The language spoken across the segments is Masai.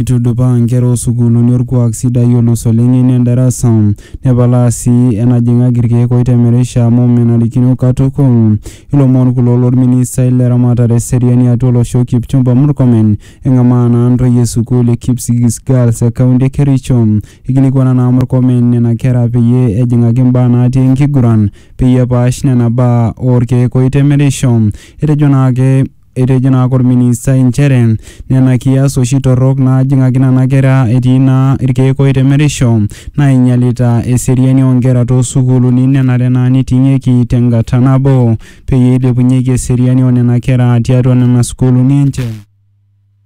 Eitudupaa nkera oo sukuuluni olkuak sidai olus oleng ene ndarasa, nepalaa sii enajing'aki ilkeek oitemerisha amu menarikino katukul. Ilomon kulo lo lministai le ramatare e seriani e atua olosho Kipchumba Murkomen. Eng'amaa naa ntoyie e sukuul e Kipsigis Girls e kaunti e Kericho. Eikilikuana naa Murkomen nena kera peyie ejing'aki mbaa naati enkiguran peyie epaash nena baa oo lkeek oitemerisho. Etejo naake. Etejo naa ake olministai nchere nena kias oshi torrok naajing'aki nena kera etii naa ilkeek oitemerisho naainyialita eseriani oo nkera too sukuuluni nenare naa neiting'ieki te ngata nabo peyie eilepunyieki eseriani oo nena kera tiatua nena sukuuluni enche.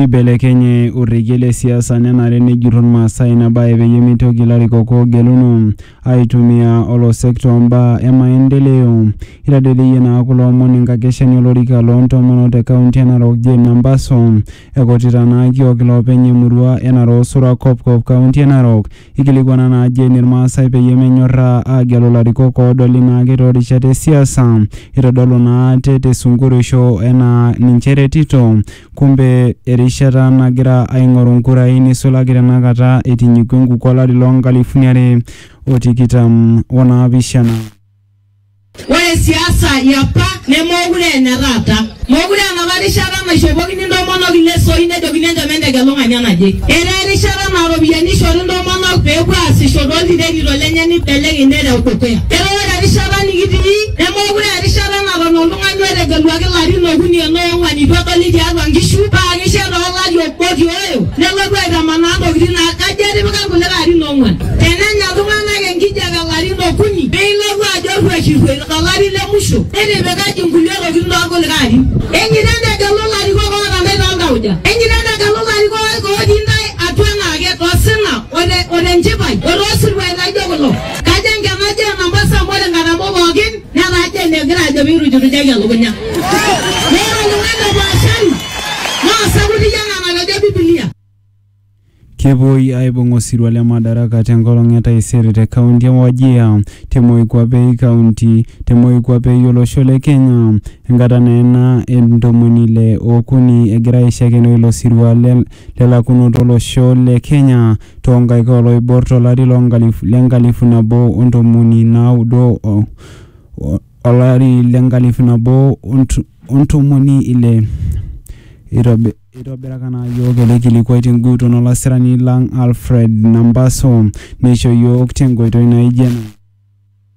Eibelekenye orekie le siasa nenare nejurru Ilmaasai ina bae peyie meitoki ilarikok oogeluno aaitumia olosek too mbaa e maendeleo. Eitadoidoyie naa kulo omon enkakeshani olorika loo ntomonok te kaunti e Narok Jane Nambaso ekutita naa kiok iloopeny emurua e Narok Sura Kopkop kaunti e Narok Eikilikuana naa Jane Ilmaasai peyie menyorraa aagelu larikok oodoli naake too rishat e siasa. Eitodolu naa ate te sunkureisho enaa ninche eretito. Kumbe erishata nagira aing'oru nkurai neisulaki tenakata eitinyikua enkukuo olari loo nkalifuni are o tikitam o naapishana. Ore siasa yapa nemookure ene taata. Mookure enapa rishata naishopokini ntomonok ilesoi nejokini enchom entegelu ng'ania naje. Etaa erishata naa ropiyiani eishori ntomonok pee epuo aasisho too ltirenito lenye neibelekeny nereu dukuya. Etaa ore erishata nikitii nemookure aa erishata naton oltung'ani otegeluaki larin okuni enaa oong'wan eitu edoli tiatua nkishu paa keisho etaa olari obo nelotu aitamanaa ntokitin naa kajo etipika irkulikae arin ong'uan. Tenenya iltung'anak enkijape ilarin okuni neilotu ajo rruaishirruai to lari le musho nitipikaki nkulie tokitin too lkulikae arin. Enyeita entegelu ilarikok oota ntae too ltauja. Enyeita entegelu ilarikok ootii ntae atua anaake to sina o te o te nchipai o too siruai laijo kulo. Kajo enkenaji oo Nampasi amu ore nkatampo pookin netaa Gen egira ajo pee eirujurujaki elukunya. Naa osauti iyie ena natejo Biblia. Kepuoi aibung osirua le Madaraka te nkolong e taisere te kaunti e Wajir te Moikuape Kaunti te Moikuape o losho le Kenya enkata naa ena e ntomoni ile o okuni egira aishakenoo ilo sirua le lakunoto o losho le Kenya too nkaik oo loibor to lari le nkalifu nabo o ntomoni naudo o olari le nkalifu nabo o ntomoni ile, eitobiraka naa iyiook ele kilikuai tenguton o lasirani lang Alfred Nambaso neisho iyiook tenkoitoi naaijo ena.